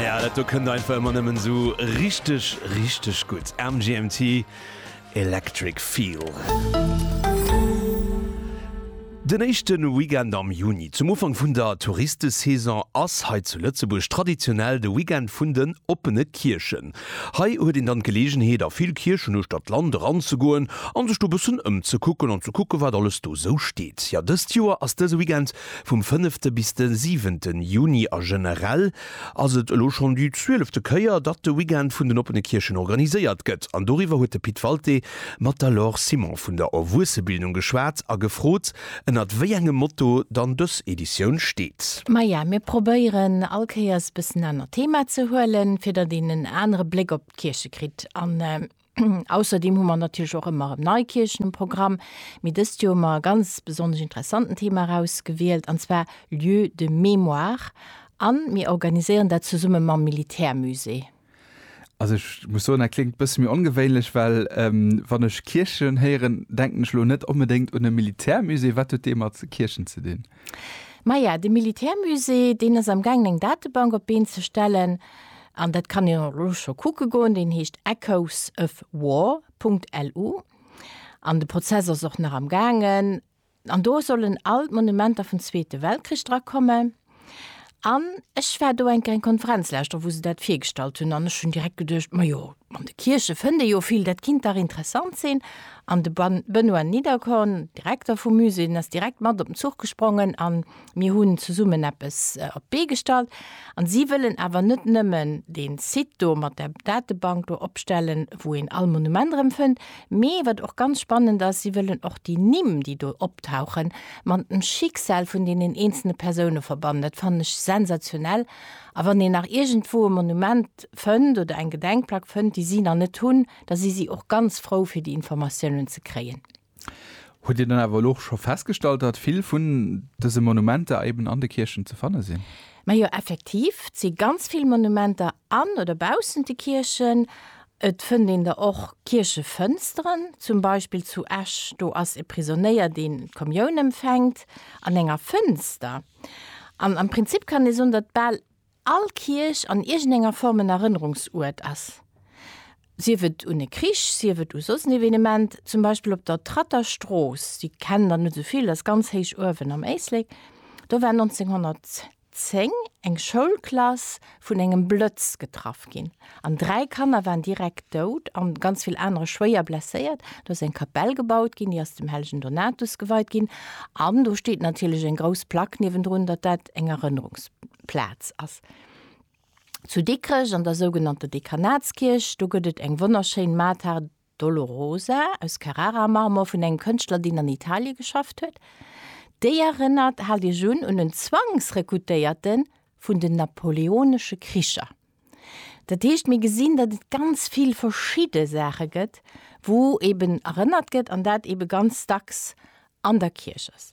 Ja, dat do kënnt einfach ëmmer nëmmen esou richteg, richteg gutt. MGMT, Electric Feel. Den éischte Weekend am Juni, zum Ufank vun der Touristesaison, ass hei zu Lëtzebuerg traditionell de Weekend vun den oppene Kierchen. Hei huet een dann d'Geleegenheet, a vill Kierchen uechtert d'Land eranzegoen a sech do e bëssen ëmzekucken an ze kucken, wat alles do esou steet. Jo, dëst Joer ass dëse Weekend Vum fënnefte bis de siwente Juni a generell ass et elo schonn déi zwielefte Kéier, datt de Weekend vun den oppene Kierchen organiséiert gëtt. An doriwwer huet de Pit Walté mat der Laure Simon vun der Erwuessebildung geschwat a gefrot, ënnert wéi engem Motto dann dës Editioun steet. Maja, mir probéieren all Kéiers e bëssen anert Thema ze huelen, fir datt een en anere Bléck op d'Kierche kritt. Ausserdeem hu mer natierlech och ëmmer erëm nei Kierchen um Programm, mee dëst Joer hu mer e ganz besonnesch interessanten Thema erausgewielt, an zwar Lieux de mémoire, a mir organiséieren dat zesumme mam Militärmusée. Also ech muss soen, dat kléngt e bësse méi ongewéinlech, well wann ech Kierchen héieren, denken ech elo net onbedéngt un e Militärmusée. Wat huet dee mat Kierchen ze dinn? Maja, de Militärmusée, deen ass am gaangen eng Datebank op d'Been ze stellen, an dat kann een och elo scho kucke goen. Deen heescht echoesofwar.lu an de Prozess ass och nach am gaangen. An do sollen all d'Monumenter vum Zweete Weltkrich drakomme. An ech war do eng kleng Konferenz leschter, wou se dat virgestallt hunn, an ech hunn direkt geduecht, majo, an de Kierche fënnt ee jo vill, dat kinnt dach interessant sinn. An de Benoît Niederkorn, Direkter vum Musée, den ass direkt mat op den Zuch gesprongen a mir hunn zesummen eppes op d'Bee gestallt. A si wëllen awer net nëmmen dee Site do mat der Datebank do opstellen, wou een all Monument erëm fënnt, Mee wat och ganz spannend ass, si wëllen och déi Nimm, déi do optauchen, mat dem Schicksal vun deenen eenzelne Persoune verbannen. Dat fannen ech sensationell. A wann een nach iergendwou e Monument fënnt oder eng Gedenkplack fënnt, déi si nach net hunn, da si si och ganz frou, fir déi Informatiounen ze kréien. Hutt Dir dann awer elo och scho festgestallt, datt vill vun dëse Monumenter eben an de Kierchen ze fanne sinn? Majo, effektiv, et si ganz vill Monumenter An oder baussent de Kierchen. Et fënnt een der och Kierchefënsteren, zum Beispill zu Esch, do ass e Prisonéier, deen d'Kommioun empfänkt an enger Fënster. An am Prinzip kann ee soen, datt bal all Kierch an iergendenger Form en Erënnerungsuert ass, sief et un e Krich, sief et u soss en Evenement. Zum Beispill op der Tratter Strooss, déi kennen der net esou vill, ass ganz héich uewen am Éislek, do war 1900. 10, eng Schoulklass vun engem Blëtz getraff ginn an dräi Kanner waren direkt dout an ganz vill anere schwéier blesséiert. Do ass eng Kapell gebaut ginn, déi ass dem hellegen Donatus geweit ginn an do steet natierlech eng grouss Plack niewendrun, datt dat eng Erënnerungsplaz ass. Zu Dikrech an der sougenannter Dekanatskierch, do gëtt et eng wonnerschéin Mater Dolorosa aus Carrara-Marmor vun engem Kënschtler, deen an Italie geschafft huet. Déi erënnert, haalt Iech un, un en Zwangsrekrutéierte vun den napoleonesche Kricher. Dat heescht, mir gesinn, datt et ganz vill verschidde Saache gëtt, wou eeben erënnert gëtt an dat eebe ganz dacks an der Kierch ass.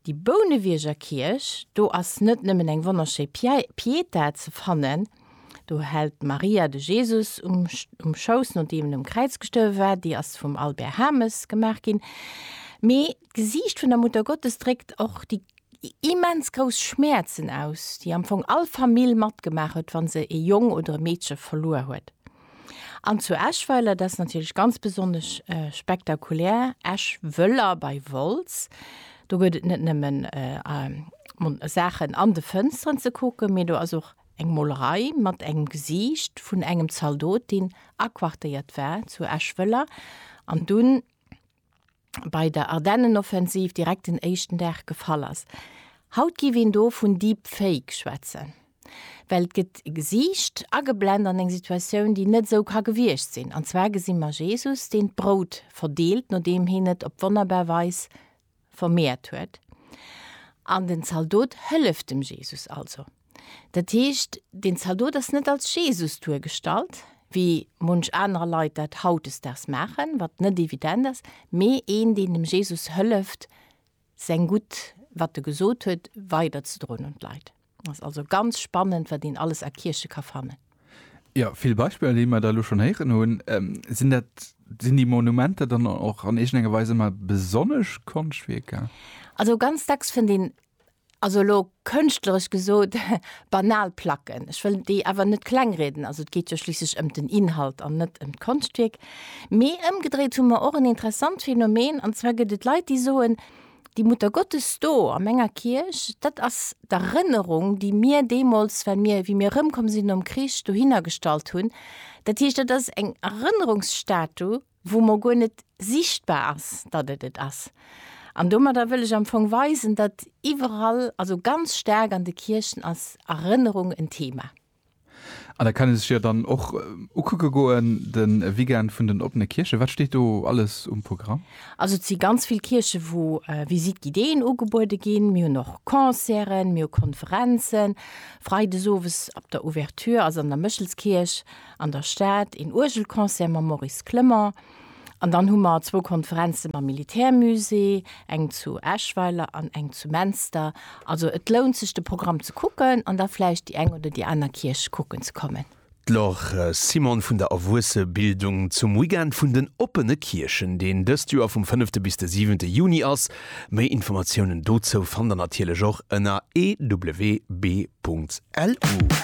Déi Bounewierger Kierch, do ass net nëmmen eng wonnerschéi Pietà ze fannen, do hält d'Maria de Jesus um Schouss, nodeem en um Kräiz gestuerwe war, déi ass vum Albert Hames gemaach ginn, mee d'Gesiicht vun der Muttergottes dréckt och déi immens grouss Schmäerzen aus, déi am Fong all Famill matgemaach huet, wa se e Jong oder e Meedche verluer huet. An zu Eschweiler, dat ass natierlech ganz besonnesch spektakulär, Eschwëller bei Wolz. Do gëtt et net nëmmen Saachen an de Fënsteren ze kucken, mee do ass och eng Molerei mat engem Gesiicht vun engem Zaldot, deen aquartéiert war zu Eschwëller an dunn, bei der Ardennenoffensiv direkt den éischten Dag gefall ass. Haut giff een do vun Deepfake schwätzen, well et gëtt e Gesiicht ageblend an eng Situatioun, déi net esou ka gewiescht sinn. An zwar gesi mer Jesus, deen d'Brout verdeelt, nodeem heen et op wonnerbar Weis vermeert huet. An den Zaldot hëlleft dem Jesus also. Dat heescht, den Zaldot ass net als Jesus duergestallt, wéi munch anerer Leit dat hautdesdaags maachen, wat net evident ass, mee een, deen dem Jesus hëlleft, säin Gutt, wat e gesot huet, weiderzedroen un d'Leit. Ass also ganz spannend, wat een alles a Kierche ka fannen. Jo, vill Beispiller, déi mer da elo schonn héieren hunn. Sinn dat, sinn déi Monumenter dann och an iergendenger Weis ëmmer besonnesch Konschtwierker? Also ganz dacks fënnt een also elo kënschtleresch gesot, banal Placken, ech wëll déi awer net kleng rieden, also et geet jo schliisslech ëm den Inhalt an net ëm d'Konschtwierk, mee ëmgedréit hu mer och en interessant Phänomen, an zwar gëtt et Leit, déi soen, déi Muttergottes do a menger Kierch, dat ass d'Erënnerung, déi mir deemools, well mir, wéi mir erëmkomm sinn nom Krich, dohinner gestallt hunn, dat heescht, dat ass eng Erënnerungsstatue. wou mer guer net sichtbar ass, datt et et ass. An domadder wëll ech am Fong weisen, datt iwwerall, also ganz staark an de Kierchen, ass Erënnerung en Thema. An dat kann ee sech jo dann och ukucke goen, de Weekend vun den oppene Kierche. Wat steet do alles um Programm? Also et si ganz vill Kierche wou Visite guidéeën ugebuede ginn. Mir hunn och Concerten, mir hu Konferenzen. Freides owes op der Ouverture ass an der Méchelskierch an der Stad, een Uergelconcert mam Maurice Clement an dann hu mer zwou Konferenze mam Militärmusée, eng zu Eschweiler an eng zu Menster. Also et lount sech de Programm ze kucken an da vläicht déi eng oder déi aner Kierch kucken ze kommen. D'Laure Simon vun der Erwuessebildung zum Weekend vun den oppene Kierchen, deen dëst Joer vum fënnefte bis de siwente Juni ass. Méi Informatiounen dozou fannt der natierlech och ënner ewb.lu.